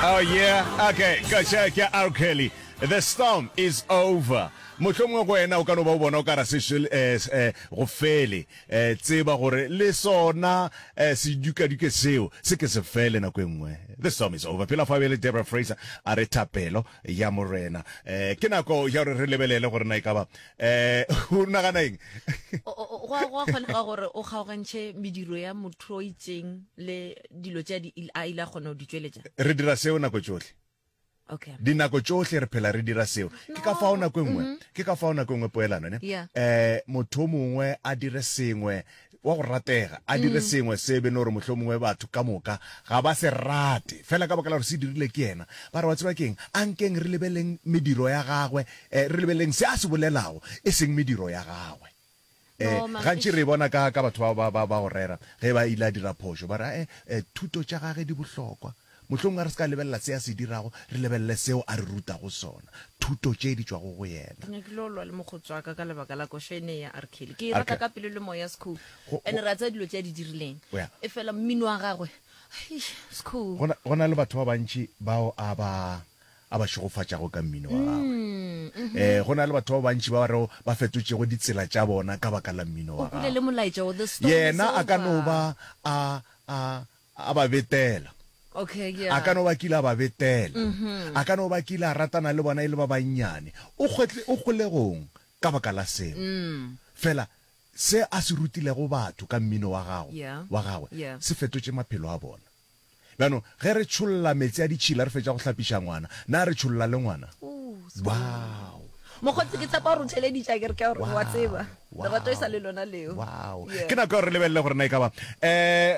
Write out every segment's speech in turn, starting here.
Oh yeah, okay, ka tša ke R. Kelly. The storm is over. mohlomongwe go wena o ka no ba o bona o ka ra se eh, eh, go fele eh, tseba gore le sona sedukaduke seo se ke se fele nako e nngwe the storm is over pela fa bele debra fraser a re thapelo ya morena um ke nako ya gore re lebelele gore na e ka ba um o nagana eng go a kgonega gore o kgaogantšhe mediro ya motho o itseng le dilo tša di il- a ile a kgona go di tšweletša re dira seo nako tšohle okay dinako tšohle re phela re dira seo ke ka fao nako e nngwe ke ka fao nako e nngwe poelano ne Yeah. eh motho o mongwe a dire sengwe wa go ratega a dire sengwe se be no gore motlho mongwe batho ka moka ga ba se rate fela ka baka la gore se dirile ke yena ba re wa tseba keng a nkeng re lebeleng mediro ya gagwe eh, re lebeleng se a se bolelago e seng mediro ya gagwe Ee, gantši re e bona ka, ka batho bao ba, ba, ba go rera ge ba ile a dira phošo, ba re, e, e, thuto tša gage di bohlokwa. Mohlomongwe a re se ka lebelela se a se dirago, re lebelele seo a re rutago sona, thuto tše di tšwago go yena. Ke nyakile go lwa le mokgotsi wa ka ka lebaka la koša ene ya R. Kelly. Ke e rata ka pelo le moya, Skhou. Ene re a tseba dilo tše a di dirileng. Efela mmino wa gagwe, eish, Skhou. Go na, go na le batho ba bantši bao a ba, a ba šegofatšago ka mmino wa gagwe. Ee, go na le batho ba bantši ba ba rego ba fetotšego ditsela tša bona ka baka la mmino wa gagwe. Yena a ka no ba a, a, a ba betela. A ka no ba kile a ba betela. A ka no ba kile a ratana le bona e le ba bannyane. O kgwetle, o kgolegong ka baka la seo? Fela se a se rutilego batho ka mmino wa gago, wa gagwe, se fetotše maphelo a bona. Bjano, ge re tšholla meetse a ditšhila re fetša go hlapiša ngwana, na re tšholla le ngwana? Wow! Mokgotsi, ke tshepa gore o theleditše, a ke re? Ke a gore, wa tseba, lerato e sa le lona leo. Wow! Ke nako ya gore re lebelele gore na e ka ba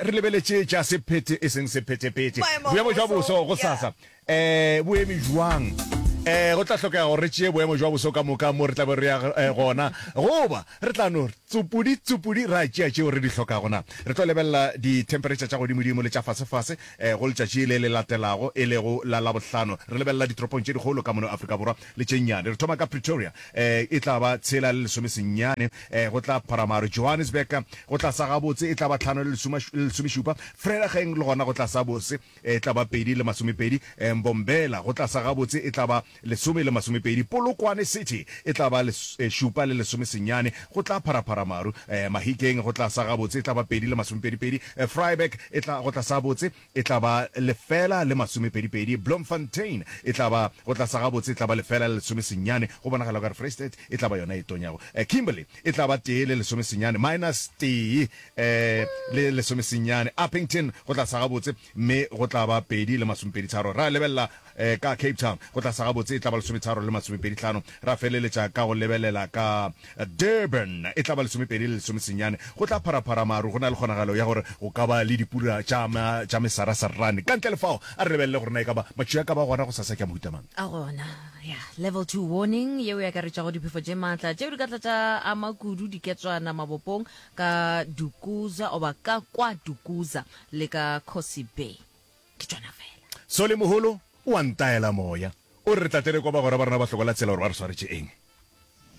re lebeletše tša sephethe e seng sephethephethe. Boemo bja boso, gosasa, E bo eme bjang? E go tla hlokega gore re tšee boemo bja boso ka moka mo re tla be re ya e, gona, goba re tla no tsupudi tsupudi ra tšea tšeo re di hlokago? Na re tlo lebelela ditempheretšha tša godimodimo le tša fasefase e, go letšatši le le latelago, e lego la Labohlano? Re lebelela ditoropong tše dikgolo ka mono Afrika Borwa le tše nnyane. Re thoma ka Pretoria, e e tla ba tshela le lesome senyane, e go tla pharamaro. Johannesburg go tla sa gabotse e tla ba tlhano le lesome, le lesomešupa. Vereeniging le gona go tla sa bose. E tla ba pedi le masomepedi, Mbombela go tlasa gabotse e tla ba lesome le masomepedi, Polokwane City e tla ba šupa le lesome senyane, go tla pharaphara maru, Mahikeng go tlasa gabotse e tla ba pedi le masomepedipedi, Vryburg e tla go tlasa gabotse e tla ba lefela le masomepedipedi, Bloemfontein e tla ba go tlasa gabotse e tla ba lefela le lesome senyane, go bonagala o ka re Vrystaat e tla ba yona e tonyago, Kimberley e tla ba tee le lesome senyane, minus tee, le lesomesenyane, Upington go tla sa gabotse, mme go tla ba pedi le masomepeditharo. Ra lebelela ka Cape Town, go tla sa gabotse e tla ba lesometharo le masomepedihlano. Ra feleletša ka go lebelela ka Durban, e tla ba lesomepedi le lesomesenyane. Go tla pharaphara maru, go na le kgonagalo ya gore go ka ba le dipura tša mesarasarane. Ka ntle le fao, a re lebelele gore na e ka ba matšwi a ka ba gona gosasa ke a mohuta mang. A gona, ya, Level Two Warning yeo e akaretšago diphefo tše matla tšeo di ka tla tša ama kudu diketswana mabopong, ka Dukuza oba ka kwa Dukuza le ka Kgosi Bay. Ke tšona fela. Soli Moholo o a ntaela moya. O re re tla tle re kwa bagwera ba rena ba hlokola tsela gore ba re swaretše eng.